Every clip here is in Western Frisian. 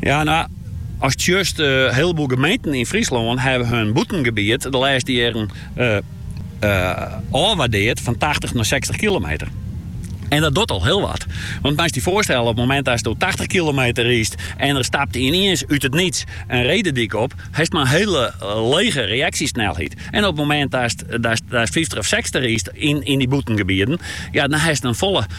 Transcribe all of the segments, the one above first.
Ja, no, ast sjochst, in hieleboel gemeenten yn Fryslân hawwe hun bûtengebiet de lêste jierren ôfwaardeard fan tachtich nei sechstich kilometer. En dat docht al hiel wat. Want moatst dy foarstelle, op it momint datsto tachtich kilometer rydst en der stapt yniens út it niets in ree de dyk op, hast mar in hiele lege reaksjesnelheid. En op it momint datst fyftich of sechstich rydst yn dy bûtengebieten, ja, dan hast in folle.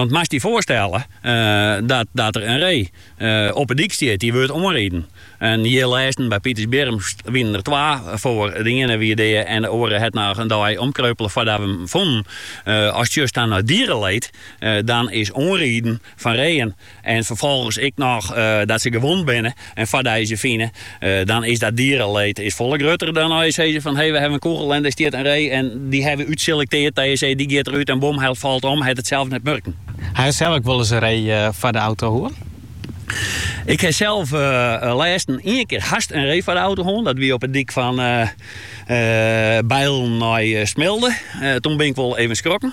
Want moatst dy foarstelle dat der in ree op 'e dyk stiet dy't wurdt oanriden. En hjir lêsten by Pitersbierrum wienen der twa foar. De iene wie dea en de oare hat noch in dei omkreupele foardat we him fonnen. Ast sjochst dan nei diereleed dan is oanriden fan reeën En ferfolgens ek noch dat se gewond binne en foardat je se fine. Dan is dat diereleed is folle grutter dan as je sizze fan hey we hawwe in kûgel en dêr stiet in ree en dy hawwe we útselekteard dat je sizze dy giet derút en bom hy falt om, hy hat it sels net murken. Haw je sels ek wolris in ree foar de auto hân? Ik haw sels lêsten ien kear hast in ree foar de auto hân. Dat wie op de dyk fan Beilen nei Smilde. Toen bin ik wol even skrokken.